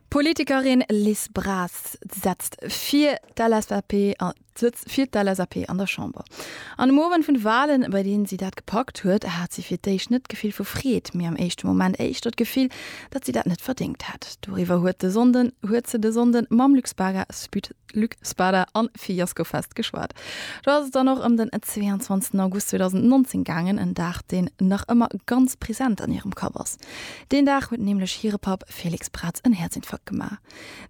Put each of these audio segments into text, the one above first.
D'Politikerin Liz Braz setzt fir d'LSAP an der Chamber. An dem Owend vun de Walen, bei deenen si dat gepackt huet, hat si fir d'éischt net d'Gefill vu Freed, mee am éischte Moment éischter d'Gefill, datt si dat net verdéngt hätt. Doriwwer huet se de Sonnden mam Luxpaga-Sputnik Luc Spada an Fiasco Fest geschwat. Do ass et dann och ëm den 22 August 2019 gaangen, en Dag deen nach ëmmer ganz present an hirem Kapp ass. Deen Dag huet nämlech hire Papp Felix Braz en Häerzinfarkt gemaach.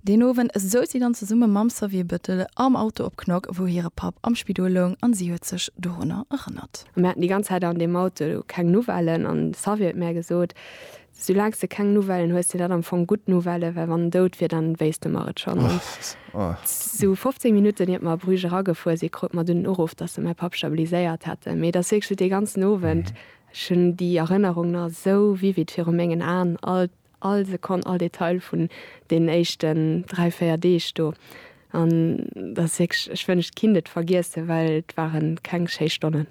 Deen Owend souz si dann zesumme mam Xavier Bettel am Auto op Knock, wou hire Papp am Spidol loung an si huet sech dorunner erënnert. Mir haten déi ganz Zäit an deem Auto keng Nouvellen an de Xavier huet mär gesot, Soulaangs de keng Nouvellen hues, sinn dat am Fong gutt Nouvellen, well wann en dout wier, dann wéisst de mer et schonn. An esou 15 Minutten iert mer a Bruges eragefuer sinn, krut mer dunn den Uruff, dass se mäi Papp stabiliséiert hätten. Mee et ass wierklech dee ganzen Owend, ech hunn déi Erënnerung nach esou vivid viru mengen Aen, all, all Sekonn, all Detail vun deenen éischten dräi, véier Deeg do. An dat ass wierklech, ech wënscht et kinnt et vergiessen, well et ware keng schéi Stonnen.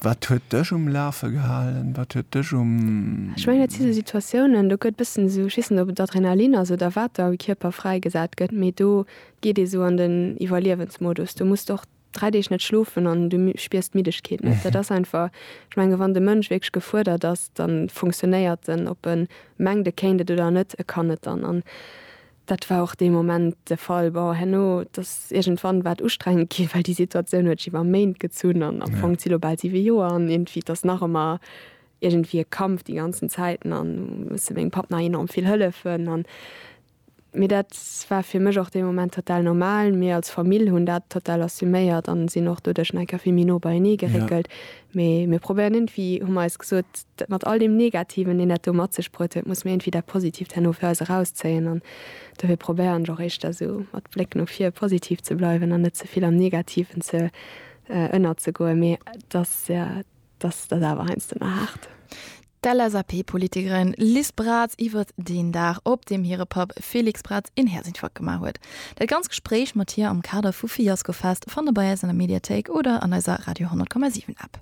Wat huet dech um Lafe gehalen? Wat huet dech um. Ech mengen dat si sou Situatiounen, do gëtt e bëssen esou, ech weess net ob et Adrenalin ass oder wat da am Kierper fräigesat gëtt, mee do geet ee sou an den Iwwerliewensmodus. Du musst och dräi Deeg net schlofen an du spiers d'Middegkeet net. Dat ass einfach, ech menge wann de Mënsch wierklech gefuerdert ass, da funktionéiert en. Ob e mengt e kéint et oder net, e kann et dann. An Dat war och dee Moment de Fall. Bon, herno, et ass iergendwann war et ustrengend ginn, well déi Situatioun huet sech iwwer Méint gezunn an am Fong si lo bal siwe Joer an iergendwéi, et ass nach ëmmer iergendwéi e Kampf déi ganzen Zäiten an musse mengem Papp nach enorm vill hëllefen an. Mee dat war fir mech och dee Moment total normal. Mir als Famill hunn dat total assuméiert an sinn och doduerch nach eng Kéier vill méi no beienee geréckelt. Mee mir probéieren iergendwéi, hu mer eis gesot, dat mat all deem Negativen, deen dat do mat sech bruet huet, musse mir iergendwéi dat Positiivt herno fir eis erauszéien. An dofir probéieren ech och éischter esou mat Bléck no vir positiv ze bleiwen an net ze vill am Negativen ze ënnerzegoen. Mee et ass, jo, et ass, et ass awer heiansdo nach haart. D'LSAP-Politikerin Liz Braz iwwert deen Dag, op deem hire Papp Félix Braz een Häerzinfarkt gemaach huet. Dat ganz Gespréich mat hir am Kader vu Fiascofest fannt der bei eis an der Mediathéik oder an eiser Radio 10,7 App.